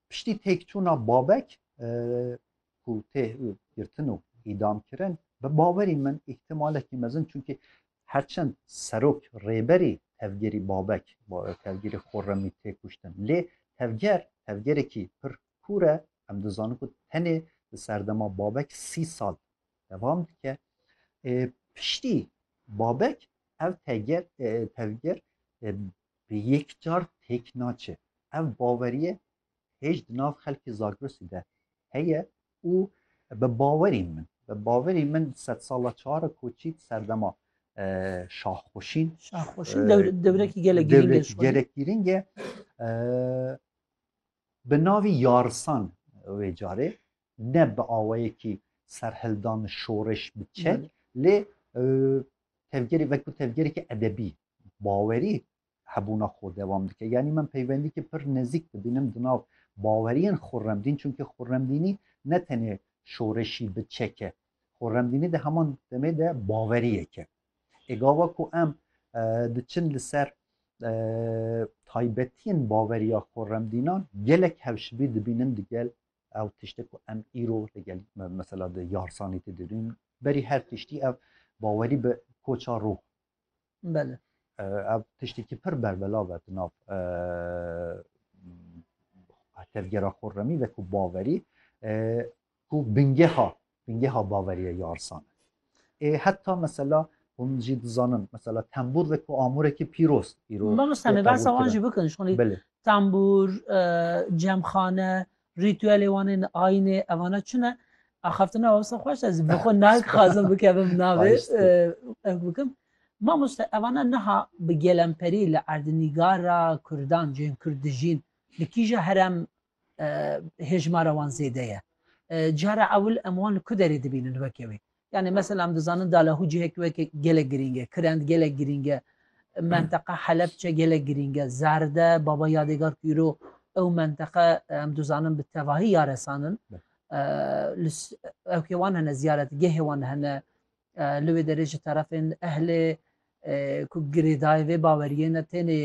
Piştî têkçûna Babek ku tê girtin û îdam kirin bi bawerî min îhtimalekî mezin çunkî herçend serok rêberî tevgerî Babek tevgerî Xurremî tê kuştin lê tevger tevgerekî pir kûr e em dizanin ku tenê li serdema Babek sî sal devam dike piştî Babek ev teger tevger bi yek car têk naçe. Ev baweriye hêj di nav xelkê Zagrosî de heye û bi bawerî min, bi bawerî min sedsala çar koçî serdema Şahxweşîn. Şahxweşîn dewrekî gelek girîng e. Gelek girîng e. Bi navî Yarisan wê carê ne bi awayekî serhildan şoreş bi çek lê tevgerê veku tevgerekî edebî bawerî hebûna xwe dewam dike. Yanî min peywendîkê pir nezîk dibînim di nav baweriyên Xurremdîn çunkî Xurremdînî ne tenê şoreşî bi çek e. Xurremdînî di heman demê de baweriyek e. Ê gava ku em diçin li ser taybetiyên baweriya Xurremdînan gelek hewşibî dibînim digel ew tiştê ku em îro digel mesela di yarsanî tê dibîn berî her tiştî ev bawerî bi koça ruh Belê. Ev tiştekî pir berbelav e di nav tevgera xurremî ve ku baverî ku bingeha bingeha baveriye yarsan e. Ê heta mesela hûn jî dizanin mesela tembûr ve ku amûrekî pîroz îro. Bano semê bersa wan jî bikin şonî tembûr, cemxane, Rîtüelê wan ên ayînê evana çi ne? Axaftina wasa xweş e zî bi xwe naxazim bikevim navê ew bikim. Mamoste evana niha bi gelemperî li erdnîgara kurdan cê yên kurd dijîn li kîja herem hêjmara wan zêde ye? Cara ewil em wan li ku derê dibînin weke wê? Yanî mesela em dizanin Dalahû cihek weke gelek girîng e, Kirend gelek girîng e, menteqa Helepçe gelek girîng e, Zerde, Baba Yadêgar ku îro ew menteqe em dizanin bi tevahî ya resan in. Ewkê wan hene, ziyaretgehê wan hene, li wê derê ji terefên ehlê ku girêdayê vê baweriyê ne tenê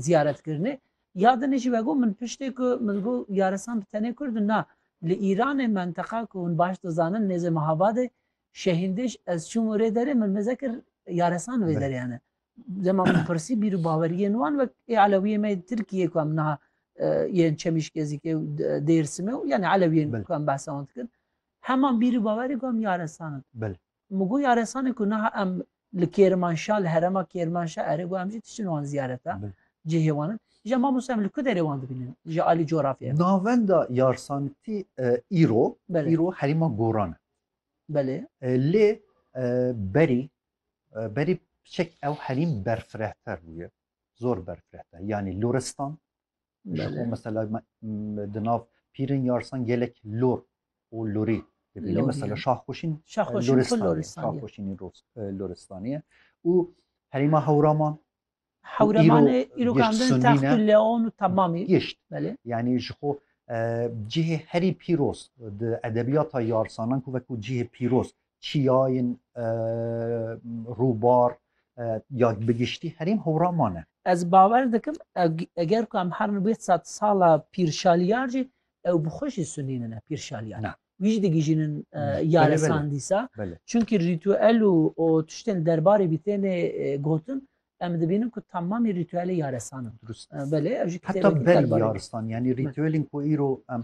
ziyaretkirinê ya dinê jî vego min piştê ku min got yarisan bi tenê kurd in na li Îranê menteqa ku hûn baş dizanin nêzê Mehabadê Şehîndêj ez çûm û rê derê min mêze kir yarisan vê derê hene dema min pirsî bîr û baweriyên wan wek ê elewiyê me yên Tirkiyê ku em niha yên Çemîşkezîkê û Dêrsimê û yanê elewiyên ku em behsa wan dikin heman bîr û bawerê got em yarisan in Min got yaresanê ku niha em li Kêrmanşa li herema Kêrmanşa erê got em jî diçin wan ziyareta cihê wan in. Îja mamoste em li ku derê wan dibînin ji alî coğrafyayê re? Navenda yarsanitî îro îro herêma Goran e. Belê. Lê berî berî piçek ew herîm berfirehter bûye. Zor berfirehter. Yanî Loristan ji bo mesela di nav pîrên yarsan gelek lor û lorî dibîne mesela şaxxoşîn şaxxoşînî loristanî û herîma hewraman hewramanê îrokandin text û leon û temamî gişt yanî ji xwe cihê herî pîroz di edebiyata yarsanan ku vekû cihê pîroz çiyayên rûbar ya bi giştî herîm hewra mane. Ez bawer dikim eger ku em herin wê sed sala Pîr Şaliyar jî ew bi xwe jî sunînine Pîr Şaliyar. Na. Wî jî digihîjînin yaresan dîsa. Belê. Çunkî rîtuel û û tiştên derbarê bî têne gotin Em dibînin ku tamamî rîtûelê yaresan in. Durust. Belê ev jî Heta kitêbekî berî telbarê. yaristan yanî rîtûelên ku îro em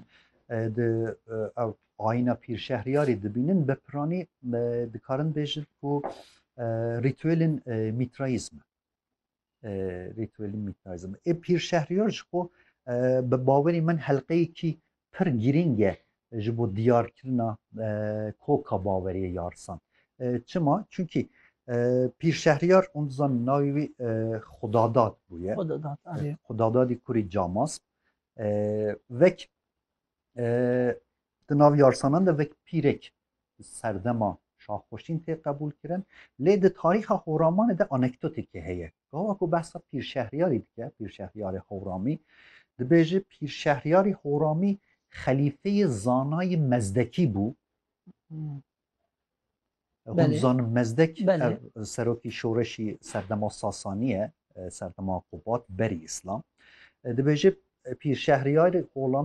e, di e, ev ayîna pîrşehriyarê dibînin bi piranî e, dikarin bêjin ku e, rîtûelên e, mîtraîzm in. E, Rîtûelên mîtraîzm. Ê pîrşehriyar ji xwe e, bi bawerî min helqeyekî pir girîng e ji bo diyarkirina koka baweriyê ya risan. Çima? Çunkî Pîr Şehriyar hûn dizanin navê wî Xwedadad bûye. Xwedadadî kurî Camas. Vek di nav yarsanan de vek pîrek serdema şaxweşîn tê qebûlkirin lê di tarîxa Hewramanê de anekdotekê heye. Gawa ku behsa pîrşehriyarî dike, pîrşehriyarê Hewramî, dibêje pîrşehriyarî Hewramî xelîfeyê zanayî Mezdekî bû. Hûn dizanin Mezdek ev serokî şoreşî serdema Sasanî ye, serdema Qubat berî îslam. Dibêje pîrşehriyarê Hewramî